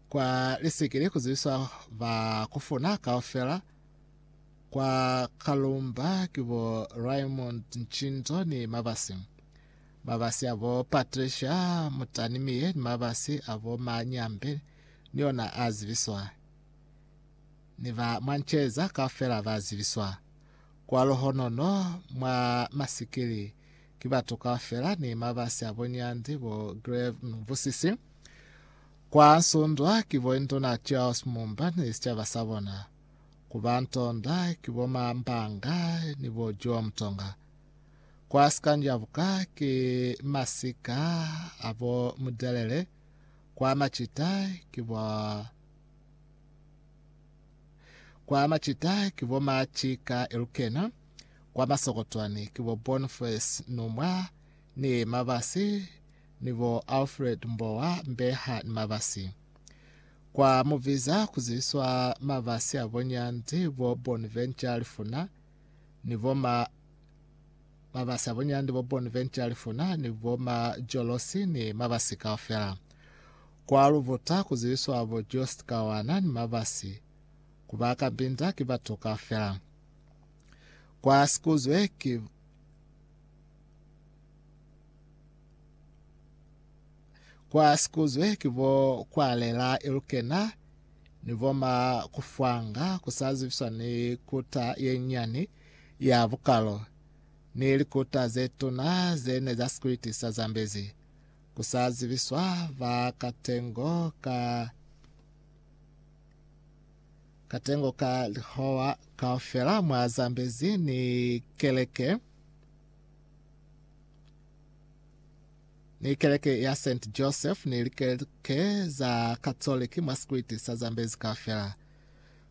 kwa lisekele ku zibiswa ba kufuna kaufela kwa Kalumba ki bo Raymond Ncinto ni mabasi mabasi a bo Patricia Mutanimiye ni mabasi a bo Ma Nyambe ni ona a zibiswa ni ba mwa Nceza kaufela ba zibiswa kwa Luhonono mwa masikili Ki batu kaufela ni mabasi abo nyandi bo Grave Mvusisi kwa nsundwa ki bo Induna Charles Mumba ni sicaba sa bona. Ku ba ntonda ki bo Ma Mbanga ni bo Joe Mtonga. Kwa sikanjabuka ki masika a bo Mudelele. Kwa macita ki bo. Kwa macita ki bo Ma Chika Elukena, kwa masokotwani ki bo Boniface Numwa ni Mabasi ni bo Alfred Mbowa Mbeha ni Mabasi. Kwa mubiza ku ziswa Mabasi a bo Nyanzi, bo Bonventure Lifuna ni bo Ma Mabasa bunyandi bo Bonventure Lifuna ni bo ma Jolosi ni mabasi kaufela. Kwa Lubuta ku zibiswa bo Just Kawana ni mabasi. Ku ba ka Mbinda ki batu kaufela. Kwa Sikuzwe ki Kwa Sikuzwe ki bo kwa Lela Ilukena ni bo ma Kufwanga ku sa zibiswa ni kuta ye nyani ya bukalo ni likuta ze tuna ze ne za sikwiti sa Zambezi, ku sa zibiswa ba katengo ka katengo ka lihowa kaufela mwa Zambezi ni keleke ni keleke ya St Joseph ni likeleke za Katoliki mwa sikwiti sa Zambezi kaufela.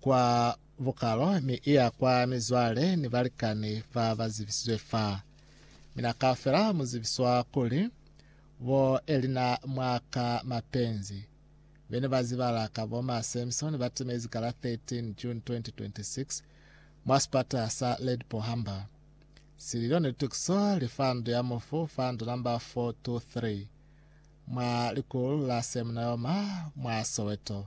kwa bukalo mi iya kwa mizwale ni balikani ba ba zibisizwe fa. Mina kaufela mu zibiswa kuli, bo Elina mwa ka mapenzi, bene ba zibala ka bo ma Samson ba timezi ka la 13 June 2026 mwa sipata sa Ledpo Humber. Sililo ni litukiso li fa ndu ya mufu fa ndu namba 423 mwa likulu la Semnayoma mwa Soweto.